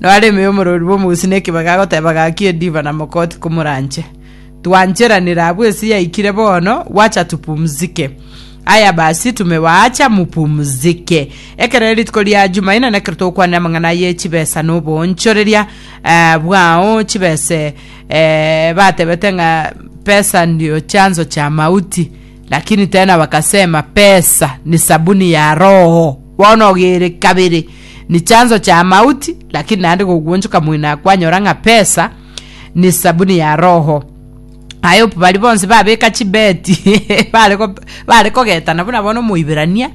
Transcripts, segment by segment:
Noareme omorori bw'omogusii na ekebaga agoteba gaki ediva na mokoti komoranche. Twancheranire abwo ase yaikire bono, wacha tupumzike. Aya basi tumewaacha mupumzike. Ekero rituko ria Jumaine nekero togokwanera amang'ana aye chibesa na oboonchoreria eh, bwao chibese eh, batebete ng'a pesa ndio chanzo cha mauti. Lakini tena bakasema, Pesa ni sabuni ya roho. Bono ogere kabere ni chanso chia mauti, lakini naende gogwonchoka moino akwanyora ng'a pesa ni sabuni ya roho. I hope bari bonsi babeka chibeti bare go- bare kogetana buna bono omoiberania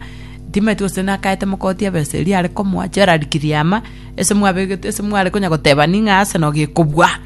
timeti gose nakaete mokoti ebesa eria are komoa Gerald kiriama ase mwabegete ase mware konya goteba ning'a Arsenal gekobua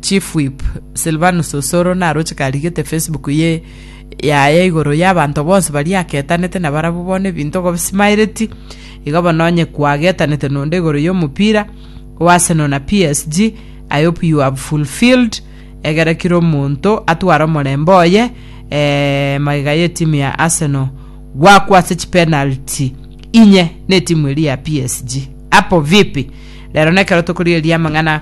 Chief Whip Silvanus Osoro naroche karigete Facebook ye yaye igoro y'abanto bonsi baria aketanete na barabwo bono ebinto gobisimaireti. Igo bono onye kwagetanete nonde igoro y'omopira o Arsenal na PSG, I hope you have fulfilled egere kira omonto atware omorembe oye eh, magega y'etimu ya Arsenal gwakwase chipenalty inye n'etimu eria ya PSG. Apo vipi? rero nekero tokorigereria amang'ana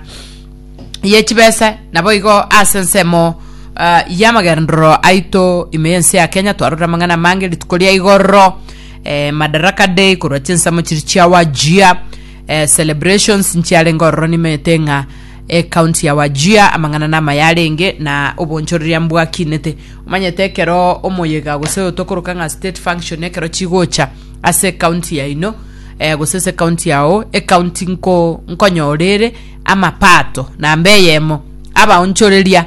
ye chibesa naboigo ase ensemo uh, yamagendero aito ime yense ya kenya twarora amang'ana mange rituko ria igoro eh, madaraka day korwa chinsemo chiri chiawajia eh, celebrations nchiare ngororo nimete ng'a ekaunti ya wajia amang'ana nama yarenge na obonchoreria mbwakinete omanyete ekero omoyega gose otokoroka ng'a state function ekero chigocha ase ecounty yaino eh, gose ase ecounty yao ecounty nko nkonyorere amapato namba eyemo abaonchoreria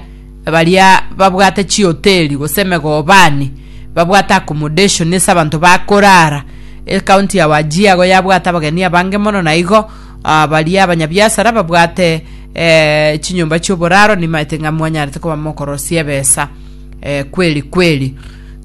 baria babwate chihoteli gose emegobani babwate accommodation ase abanto bakorara ecounty ya wajia igo yabwate abageni abange mono na igo ah, baria abanyabiasara babwate eh, chinyomba chioboraro nimaete ng'a mwanyarete koba mokorosia ebesa eh, kweri kweri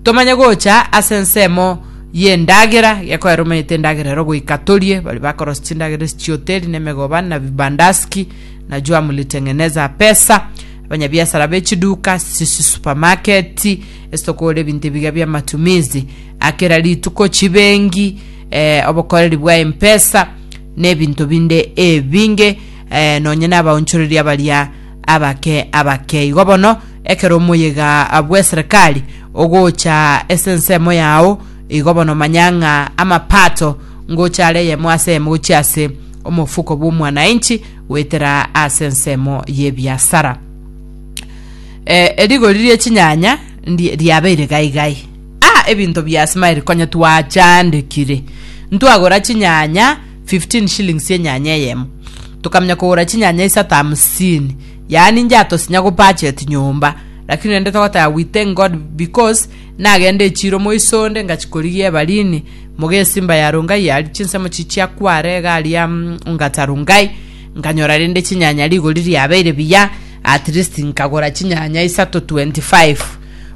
Tomanye gocha ase ensemo y'endagera, gekoera omanyete endagera ero goika torie, baria bakorosia chindagera ase chihoteli na emegoba na vibandaski, na jua mulitengeneza pesa. Abanyabiasara b'echiduka, chisupamaketi, ase tokogora ebinto ebiga bi'amatumizi a kera rituko, chibengi, eh, obokoreri bwa empesa, na ebinto binde ebinge, eh, nonye na abaonchoreria baria abake abake igo bono, Ekero omoyega bw'eserekari ogocha ase ensemo yao, igo bono manya ng'a amapato ngocha are eyemo ase eyemo gochia ase omofuko bw'omwanainchi goetera ase ensemo y'ebiasara. Eh, erigori rie chinyanya ndi- riabeire gaigai. Ah, ebinto bia smile konya twachandekire. Ntwagora chinyanya 15 shillings enyanya eyemo. Tokamenya kogora chinyanya isato hamsini. Yaani inche atosinya gopurchase nyomba, lakini rende togoteba we thank God because nagende echiiro moiso onde ngachikorigia ebarini, Mugesimba ya Rongai yaria chinsemo chichia kware iga aria mm, Ongata Rongai, nkanyora rende chinyanya rigori riabeire biya, at least nkagora chinyanya isato 25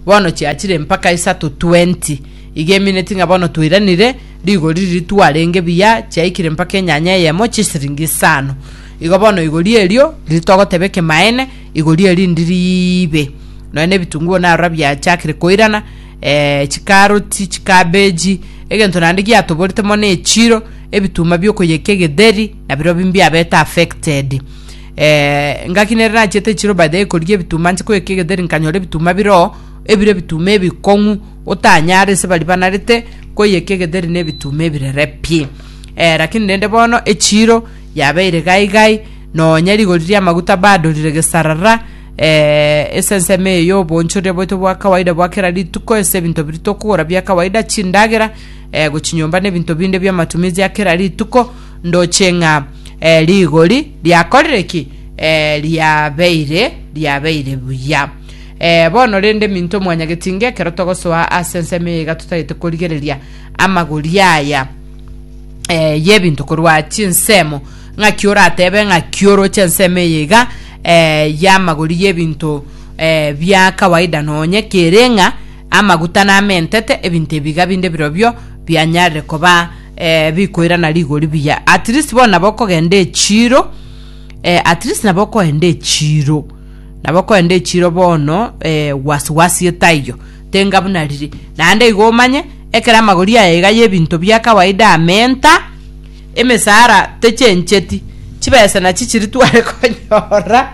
bono chiachire mpaka isato 20 iga emineti ng'a bono twairanire, rigori riria twarenge biya chiaikire mpaka enyanya eyemo chisiringi isano. Igo bono igori erio riri togoteba ekemaene, igori erindi riibe. Nonya na ebitunguo narora biachakire koirana, eh, chikaroti, chikabeji, egento naende giatoborete mono echiro, ebituma biokoyekia egetheri, nabirobio mbiabete affected. Eh, ngaki nere nachiete echiro by the way korigia ebituma nche koyekia egetheri nkanyora ebituma biroo, ebire ebituma ebikong'u, otanyare ase baria banarete koyekia egetheri na ebituma ebirere pi. Eh rakini rende bono echiro. Yabeire gai gai, nonya rigori ri'amaguta badorire gesarara, ee, esensemo eye y'oboonchoria bwaito bwa kawaida bwa kera rituko, ase ebinto biria tokogora bia kawaida, chindagera, ee, gochia nyomba na ebinto binde bi'amatumizi a kera rituko, ndoche ng'a ee, rigori riakorire ki? Ee, riabeire, riabeire buya. Ee, bono rende minto mwanyagetinga ekero togosoa ase ensemo eye iga totagete korigereria amagori aya. eh, yebinto korwa chinsemo ng'aki oratebe ng'aki oroche ensemo eye iga eh, yamagori yebinto eh, bia kawaida nonye kereng'a amaguta namentete ebinto ebiga binde birobio bianyarire koba eh, bikoirana rigori biya at least bono nabo okogenda echiro eh, at least nabo okoenda echiro nabo okoenda echiro bono eh, wasiwasi etaiyo Tenga buna riri, naende igo omanye, ekero amagori aya iga y'ebinto bia kawaida amenta, emesara techencheti, chibesa nachi chiri tware konyora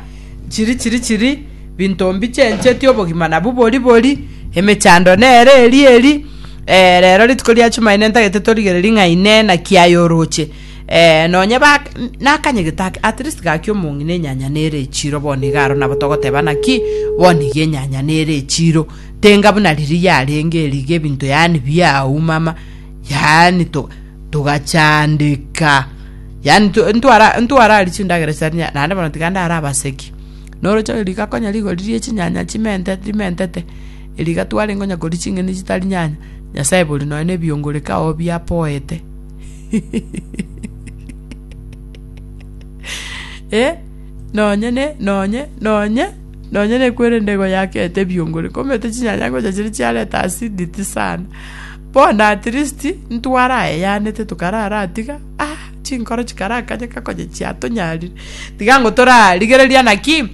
chiri chiri chiri, binto mbichencheti, obogima nabwo bori bori, emechando nere eri eri. Eh, rero rituko ria Chumaine ntagete torigererie ng'a Inee, naki aye oroche? Ee, nonya ba nakanyegete ake, at least gaki omong'i na enyanya nere echiro bono iga aro nabo togoteba naki bono iga enyanya nere echiro tenga buna riria yarenge eriga ebinto yaani biaumama yaani to togachandeka yaani nto- ntwara ntwarari chindagera chitarinya naende bono tiga ndare abaseki noroche riga konya rigori rie chinyanya chimente rimentete eriga twarenge onya koria ching'eni chitari nyanya nyasaye bori nonye na ebiongoreka oo biapoete. Eh, nonye ne, nonye, nonye, nonye nekwerende igo yakete ebiongore, komete chinyanya ngocha chire chiareta acidity sana. Bono at least, ntware aye yanete tokarara tiga, ah, chinkoro chikarakanyeka konya chiatonyarire. Tiga ngo torarigereria naki,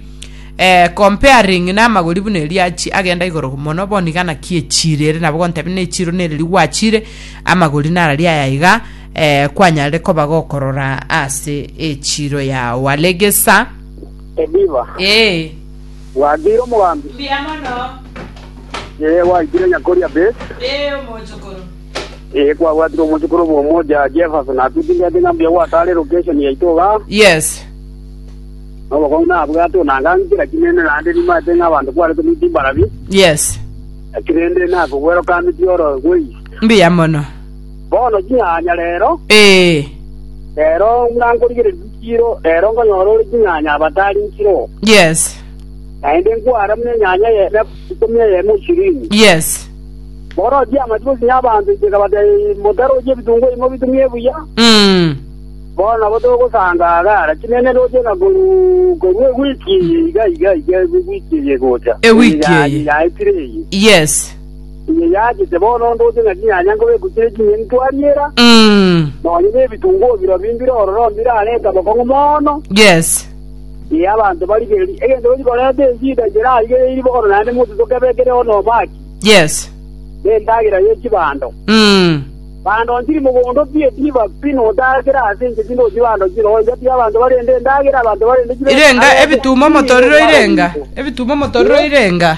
eh, comparing na amagori buna eria achi- agenda igoro mono, bono iga naki echiro ere nabo gontebia ne echiro nere rigwachire, Amagori nararie aya iga, eh, kwanyarire koba gokorora ase echiiro yao. Alegesa. Ediva, Ee. bwakeire omogambi? Mbuya mono. Ee, gwaikire nyakoria Bess? Ee, omochokoro. Ee, kwabwatire omochokoro bw'omochia Jefferson. Natutindete ng'a mbuya gwatare location yaito iga. Yes. Nobokong'u nabwate onanga nkera kinene naende nimanyete ng'a abanto kwarete nigo timbarabie. Yes. Eki rende nakobwera okameti oro gwei. Mbuya mono. Bono ching'anya rero, Ee. rero buna nkorigereria chichiiro, rero nkonyora ore ching'anya abatari nchiroo. Yes. Naende nkwara buna enyanya eyemo ikomi eyemo ishirini. Yes. Bono chiamati gosinya abanto inche nkabatebia, Motaroche ebitungu ebi mobitumie buya, Mm. bono nabo togosanga agara. Chinene roche ng'a korwa korwa ewiki eye iga iga iga ewiki eye egocha. Ewiki Eye ya- eye. yaetire eye. Yes. Eye yaachete bono onde oche ng'a chinyanya nkobe egochire chinyeni twariera, Mm. nonya nebitunguo birobio mbire ororo mbirarete obokong'u mono, Yes. ee, abanto barigererie. Egento gochi koreta eshida ncherarigereiri bono naende monto tokebe ekere one omaki, Yes. nendagera ye chibando. Mm. Bando ntiri mogondo pi etiba pi notakera ase inche tinde oti bando chire ocha pi abanto barende endagera abanto barende chibe Irenga ebitumo motoriro irenga. Ebitumo motoriro irenga.